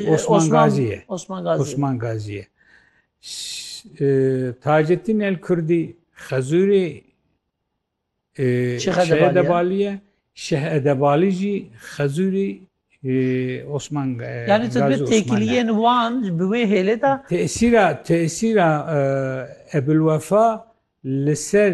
Osman Gazî ye. Osman Gazî. Osman Gazî ye. Taceddîn El Kurdî Xezûrê Şehedebalî ye. Şehedebalî jî Xezûrê Osman Gazî. Yani tu bir têkiliyên wan bi wê hêlê de tesîra tesîra Ebulwefa li ser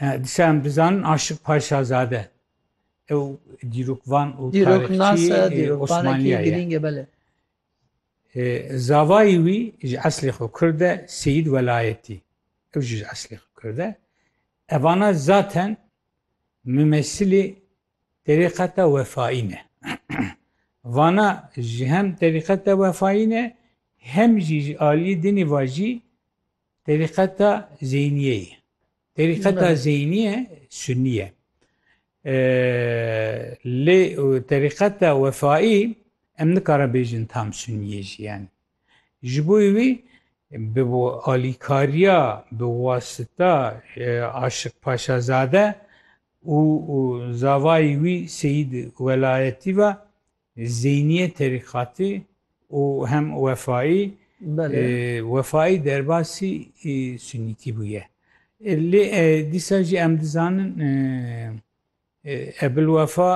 Disa em dizanin Aşik Paşazade ew dîrokvan û tarixçî Osmaniyê girîng e bele. Zavayî wî ji eslê xwe Kurd e Seyîd Welayetî ew jî ji eslê xwe Kurd e. Evana zaten mimesilê terîqeta wefayî ne. Vana ji hem terîqeta wefayî ne hem jî ji aliyê dinê vajî Terîqeta Zeyniyê ye. Terîqeta Zeyniye Sunnî ye. Lê terîqeta Wefayî em nikare bêjin tam Sunniyê jî yani. Ji bo wî bi alîkariya bi wasita Aşiq Paşazade û zavayî wî Seyîd Welayetî ve Zeyniyê terîqatî û hem wefayî, wefayî derbasî sunîtî bûye. Lê dîsa jî em dizanin Ebilwefa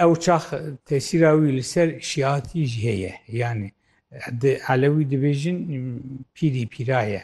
ew çax tesîra wî li ser şîatî jî heye. Yanî di elewî dibêjin pîrî pîra ye.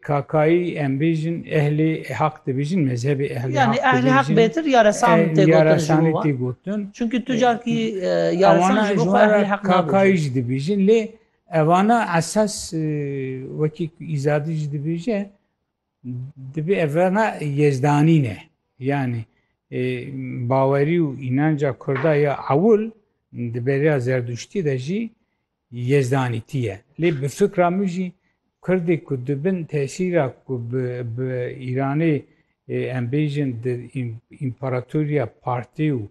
Kakayî em bêjin ehlê haq dibêjin mezhebê ehlê haq dibêjin. Yani ehlê haq bêtir ya resan tê gotin. Ya resanê tê gotin. Çünkü tu carkî ya resan ji bo xwe ehlê haq nabêjin. Kakayî jî dibêjin lê evana esas wekî îzadî jî dibêje dibê evana yezdanî ne. Yani bawerî û înanca kurda ya ewil di beriya zerdûştî de jî Yezdanî tî ye. Lê bi fikra min jî Kurdê ku di bin tesîra ku bi bi Îranê em bêjin di împaratoriya Partê û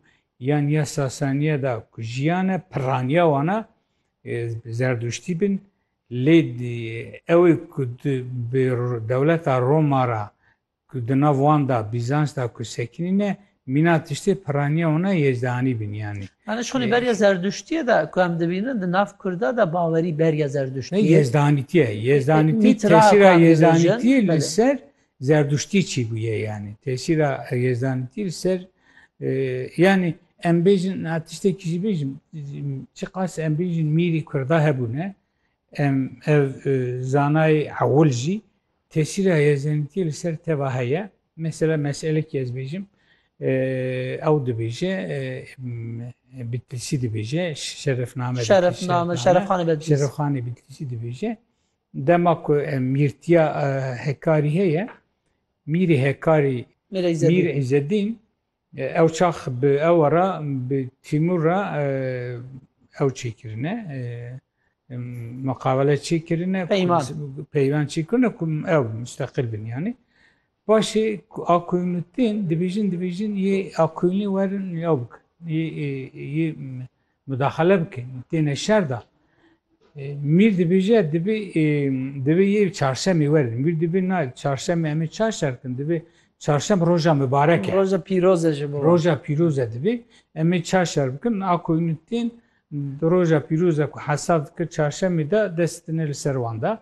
yan ya Sasaniya da ku jiyane pirraniya wan e Zerdûştî bin lê ew ê ku di bi dewleta Roma ra Ku di nav wan da Bîzans da ku sekinî ne, mîna tiştê piraniya wan a yecdehanî bîn yanî. Yanî ji xûnê beriya zerduştiyê de ku em dibînin di nav kurda de bawerî beriya zerduştiyê. Ne yecdehanîtî ye. Yecdehanîtî tesîra yecdehanîtî li ser zerduştî çi bûye yanî. Tesîra yecdehanîtî li ser yanî em bêjin na tiştekî jî bêjim çiqas em bêjin mîrî kurda hebûne em ev zanayê ewil jî Tesîra Yezenîtiyê li ser teva heye. Mesela meselekî ez bêjim, ew dibêje Bitlîsî dibêje, şerefname Şerefname, şerefxanê Bitlîsî. Şerefxanê Bitlîsî dibêje. Dema ku mîrtiya Hekarî heye, mîrê Hekarî Mîr Îzzedîn Ew çax bi ewa re bi Tîmûr re ew çê kirine, muqabele çê kirine, peyvan çê kirine ku ew musteqil bin yanî. Paşê Akoyûnû tên dibêjin dibêjin yê Akoyûnê werin ew bikin. Yê Mudaxale bike têne şer da. Mîr dibêje dibê dibê yê çarşemê werin. Mîr dibê na çarşemê em ê çar şer kin dibê çarşem roja mibarek e. Roja pîroz e ji bo. Roja pîroz e dibê em ê çar şer bikin a ku hûn tên di roja pîroz e ku hesab dikir çarşemê de dest tine li ser wan da.